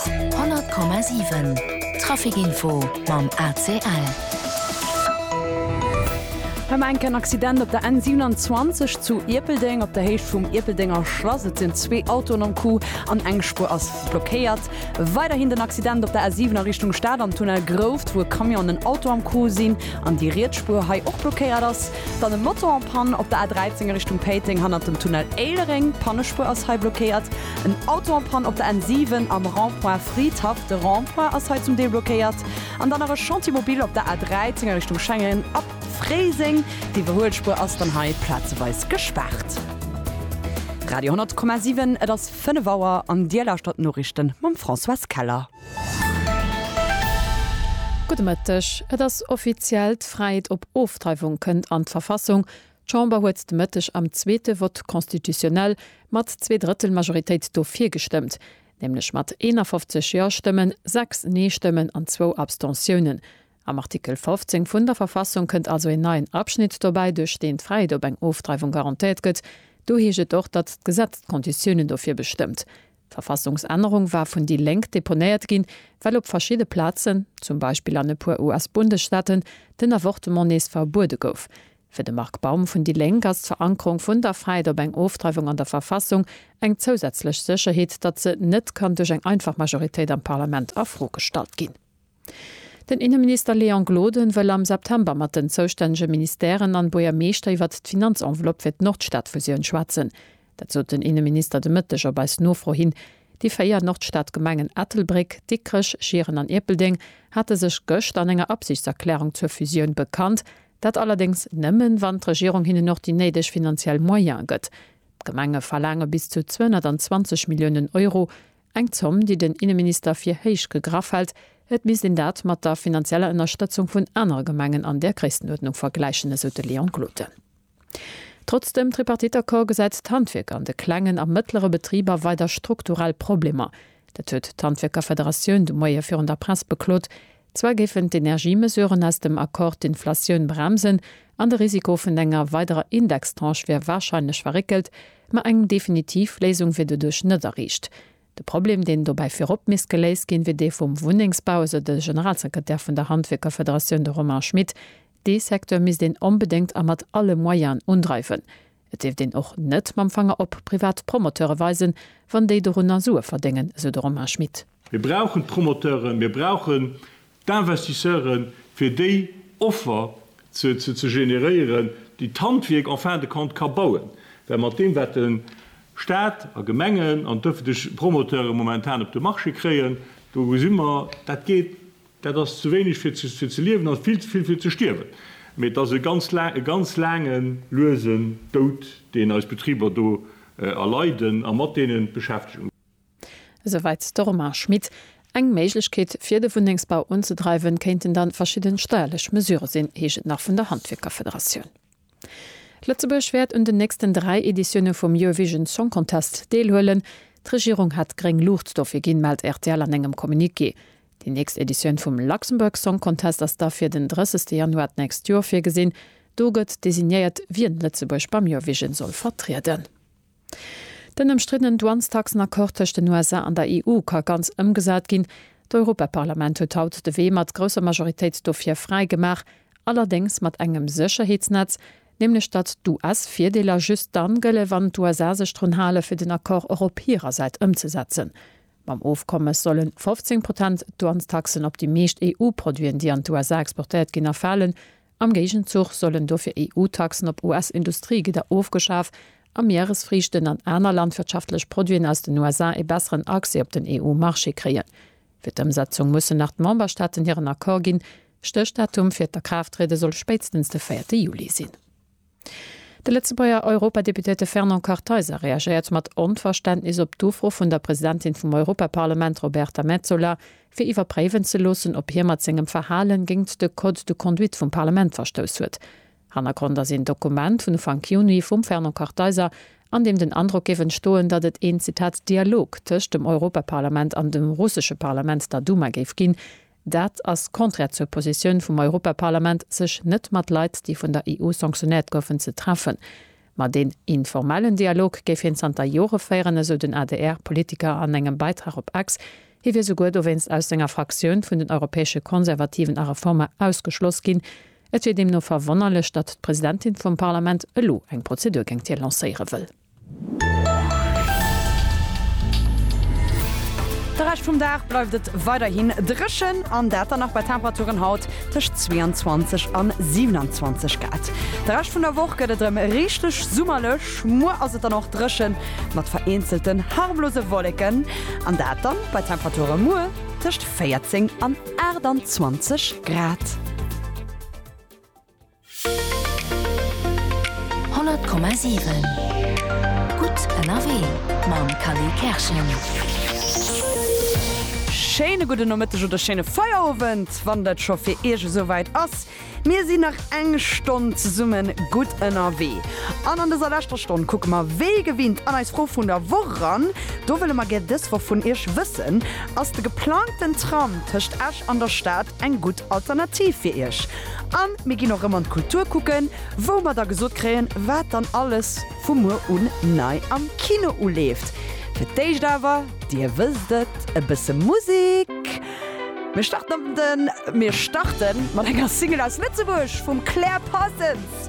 100,7 Trafic Info mam ACL. Hei war enk en Accident op der N27 zu Ierpeldeng. Op der Héicht vum Ierpeldenger Schlass, et sinn zwee Autoen am Coup an eng Spuer ass blockéiert. Weiderhin den Accident op der A7 a Richtung Stad am Tunnel Grouft, wou e Camion an en Auto am Coup sinn an déi riets Spuer hei och blockéiert ass. Dann e Moto en Panne op der A13 a Richtung Péiteng hannert dem Tunnel Éilereng, d'Pannespuer ass hei blockéiert. En Auto en panne op der N 7 am Rond-point Fridhaff, de Rond-point ass hei zum Deel blockéiert. An dann nach e Chantier mobile op der A 13 a Richtung Schengen ab Fréiseng. D'Iwwerhuelspuer ass dann hei plazeweis gespaart. Radio 10,7 Et ass 5 Auer an Dir lauschtert d'Noriichten mam Françoise Keller. Gudde Mëtteg. Et ass offiziell, D'Fräiheet op Ofdreiwung kënnt an d'Verfassung. D'Chamber huet de Mëtteg am zweete Vote constitutionnel mat Zweedrëttelmajoritéit do virgestëmmt, nämlech mat 51 Ja-Stëmmen, 6 Nee-Stëmmen an zwou Abstentiounen. Am Artikel 15 vun der Verfassung kënnt also een neien Abschnitt dobäi, duerch deen d'Fräiheet op eng Ofdreiwung garantéiert gëtt. Do heescht et och, datt d'Gesetz d'Konditiounen dofir bestëmmt. D'Verfassungsännerung war vun déi Lénk deponéiert ginn, well op verschidde Plazen, zum Beispill an e puer US-Bundesstaaten, den Avortement nees verbuede gouf. Fir de Marc Baum vun déi Lénk ass d'Verankerung vun der Fäit op eng Ofdreiwung an der Verfassung eng zousätzlech Sécherheet, datt se net kann duerch eng einfach Majoritéit am Parlament a Fro gestallt ginn. Den Inneminister Léon Gloden wëll am September mat den zoustännege Ministèren an Buergermeeschter iwwert d'Finanzenveloppe fir d'Nordstadfusioun schwätzen. Dat sot den Inneminister de Mëtteg op eis Nofro hin. Déi véier Nordstadgemengen Ettelbréck, Dikrech, Schieren an Ierpeldeng hate sech gëscht an enger Absichtserklärung zur Fusioun bekannt. Dat allerdéngs nëmmen, wann d'Regierung hinnen och déi néideg finanziell Moyene gëtt. D'Gemenge verlaange bis zu 220 Milliounen Euro, eng Zomm, déi den Inneminister fir héich gegraff hält. Et misst een dat mat der finanzieller Ënnerstëtzung vun anere Gemengen an där Gréisstenuerdnung vergläichen, esou de Léon Gloden. Trotz dem Tripartite-Accord gesäit d'Handwierk an de klengen a mëttlere Betriber weider strukturell Problemer. Dat huet d'Handwierkerfederatioun de Moie virun der Press beklot. Zwar géifen d'Energiemesuren aus dem Accord d'Inflatioun bremsen an de Risiko vun enger weiderer Indextranche wier warscheinlech verréckelt, ma eng definitiv Léisung wier doduerch net erreecht. De Problem, deen dobäi virop misst geléist ginn, wier dee vum Wunnengsbau, esou de Generalsekretär vun der Handwierkerfederatioun, de Romain Schmit. Dee Secteur misst een onbedéngt a mat alle Moyenen undreiwen. Et dierft een och net mam Fanger op privat Promoteure weisen, wann déi dorunner Sue verdéngen, esou de Romain Schmit. Mir brauchen d'Promoteuren, mir brauchen d'Investisseuren, fir déi Offer ze generéieren, déi d'Handwierk en fin de compte ka bauen. Well mat deem, wat de Stat a Gemengen an d'ëffentlech Promoteure momentan op de Marché kréien, do gesi mer, dat geet Dat ass ze wéineg fir ze fir ze liewen an vill ze vill fir ze stierwen. Mee et ass e ganz laang e ganz laange luesen Doud deen eis Betriber do erleiden a mat deenen d'Beschäftegung. Esouwäit de Romain Schmit. Eng Méiglechkeet fir de Wunnengsbau unzedreiwen, kéinten dann verschidden steierlech Mesure sinn, heescht et nach vun der Handwierkerfederatioun. Lëtzebuerg wäert un den nächsten dräi Editioune vum Eurovision Song Contest deelhuelen. D'Regierung hat gréng Luucht dofir ginn, mellt rtl an engem Communiqué. Déi nächst Editioun vum Luxembourg Song Contest ass da fir den 30 Januar d'nächst Joer virgesinn. Do gëtt designéiert, wien Lëtzebuerg beim Eurovision soll vertrieden. Den ëmstriddenen Douanestaxen-Accord tëscht den USA an der EU ka ganz ëmgesat ginn. D'Europaparlament huet haut de Wee mat grousser Majoritéit dofir fräi gemaach, allerdéngs mat engem Sécherheetsnetz, nämlech datt d'US-Virdeeler just dann gëlle wann d'USA sech drun hale fir den Accord och op hirer Säit ëmzesetzen. Mam Ofkommes solle 15 Protent Douanestaxen op déi meescht EU-Produiten, déi an d'USA exportéiert ginn, erfalen, Am Géigenzuch sollen dofir EU-Taxen op US-Industriegidder ofgeschaf a Mieresfriichten an aner landwirtschaftlech Produiten aus den USA ee besseren Accès op den EU-Marché kréien. Fir d'Ëmsetzung mussen nach d'Memberstaaten hiren Accord ginn. Stéchdatum fir d'Akraafttriede soll spéitstens de véierte Juli sinn. De Lëtzebuerger Europadeputéierte Fernand Kartheiser reagéiert mat Onverständnis op d'Ufro vun der Presidentin vum Europaparlament Roberta Metsola, fir iwwerpréiwen ze loossen, ob hie mat sengem Verhalen géint de Code de conduite vum Parlament verstouss huet. Hannergrond ass een Dokument vun Ufank Juni vum Fernand Kartheiser, an deem den Androck géif entstoen, datt et een, Zitat, Dialog tëscht dem Europaparlament an dem russesche Parlament, der Duma, géif ginn, Dat ass konträr zur Positioun vum Europaparlament, sech net mat Leit, déi vun der EU sanctionnéiert goufen, ze treffen. Ma deen informellen Dialog géif hien zanter Jore féieren, esou den ADR-Politiker an engem Beitrag op X. Hie wier souguer dowéinst aus senger Fraktioun vun den europäesche Konservativen a Reformer ausgeschloss ginn. Et wier deemno verwonnerlech, datt d'Presidentin vum Parlament elo eng Prozedur géingt hie lancéiere wëll. De Rescht vum Dag bleift et weiderhin dréchen an dat dann nach bei Temperaturen haut tëscht 22 an 27 Grad. De Rescht vun der Woch gëtt et erëm richteg summerlech. Muer ass et dann och dréchen, mat vereenzelten harmlose Wolleken an dat dann bei Temperature muer tëscht 14 an 28 Grad. 100,7 Gutt ënnerwee mam Kally Kerschen. Schéine gudden Nomëtteg oder schéine Feierowend, wann dat scho fir Iech esouwäit ass. Mir sinn nach eng Stonn zesumme gutt ënnerwee. An an dëser leschter Stonn kucke mer wéi gewinnt an eis Fro vun der Woch eran. Do wëlle mer gär dës Woch vun Iech wëssen, Ass de geplangten Tram tëscht Esch an der Stad eng gutt Alternativ fir Iech? A mir ginn och rëm an d'Kultur kucken, wou mer da gesot kréien, wat dann alles vu muer un nei am Kino uleeft. Fir d'éischt awer, Dir wësst et, e bësse Musek. Mir starten op den, mir starten mat enger Single aus Lëtzebuerg vum Claire Parsons.